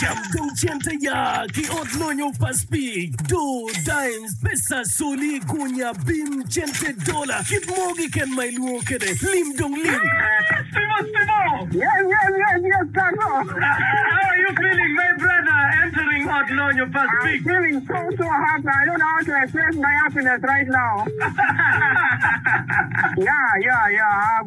Cam dong cente ya ki ot lonyo pa Spig, do, dimes, pesa, soli, gunya, bim, cente, dola, kit mo kiken ma ilwongo kede. Lim dong lim.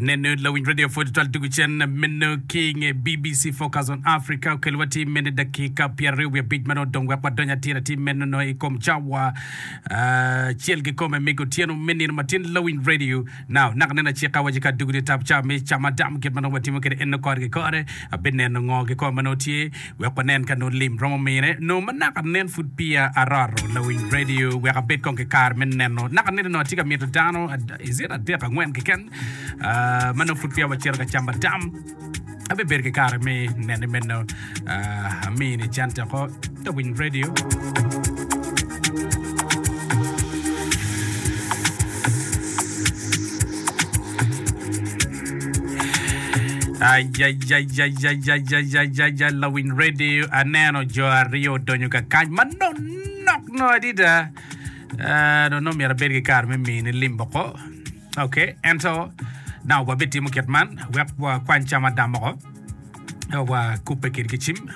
Nenu lawiny radio pwod twal tugo cen meno ki nge BBC Focus on Africa okel wa tim meno dakika pyer aryo wiye bic mano dong wek wadonyo atira tim meno no i kom cawa cel ki kome migo tieno me nino matin lawiny radio now nak nena ci ka waje ka dugo ni tap ca me cama dam kit mano watimo kede eno kore ki kore abin neno ngo ki kore mano tye Wek wanen ka nongo lim romo mine, nongo ma naka anen pud peya aroto lawiny redio wek abed kong ki kare me neno. Naka aneno nongo atye ka mito dano is it adek angwen keken ma nongo pud peya wacito ka camba tam. Abibedo ki kare me nene meno. Amini cente ko lawiny redio. Ajajajajajajaja lawiny radio aneno jo aryo odonyo ka kany ma nok nok no adida Ah, dong nongo myero abed ki kare me mini lim boko ok ento dang wabitimo kit man wek wakwany cam adam moko Eka wakubbe kit ki cim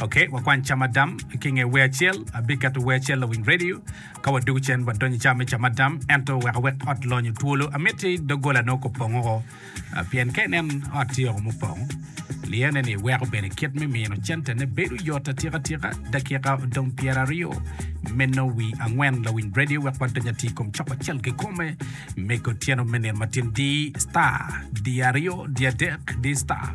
ok wakwany cam adam ki nge wer acel abiketo wer acel lawiny radio Ka wadwogo cen wadonyo i cawa me camadam, ento wek awek ot lonyo twolo, amitti doggolane oko pong oko, pien ka inen ot tye oko mupong, liyene-ni weko bene kit me mino centene bedo yot atika tika. Dakika odong pyeraryo me nongo wi angwen, lawiny redio wek wadony ati i kom cok acel kikome me kotyeno me nino matin. Di star, di aryo, di adek, di star.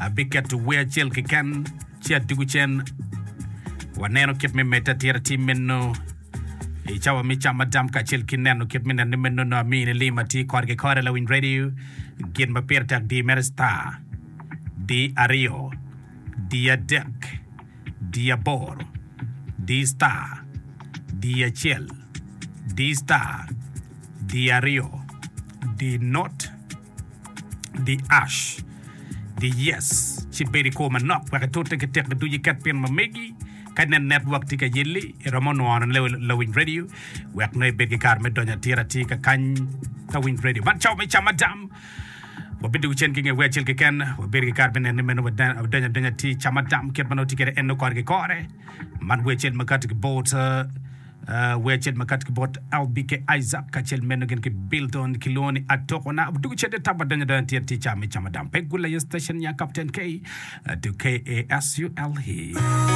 Abiketo wer acel keken ci adwogo cen. Waneno kit me medde atira tim meno i cawa me cam madam kacel ki neno kit me nenne meno no ami ni lim ati kore ki kore lawiny radio gin ma pire tek di mere star di aryo di adek di aboro di star di acel di star di aryo di not Di Ash, Di Yes, ci bed i kwo manok wek itute ki tekki ducu iket pien ma megi. Ka inen netwok tye ka yelli, iromo nwono lawiny redio wek nongo ibed ki kare me donyo atir atir ka kany ka winy redio. Man cawa me Camadam. Wabidwogo cen ki nge wer acel keken. Wabedo ki kare me neno ni meno wadonyo adonya atir Camadam kit ma nongo tye kwede en nongo kore ki kore. Man wer acel ma kati ki bot Wee acel makati ki bot Albi ki Isaac kacel meno gin ki Bilton kilwongo ni Atoko na doko cente tam adonyo adonya tyer tye ca me camo dam pe gula ye station nya Captain K to KASULE.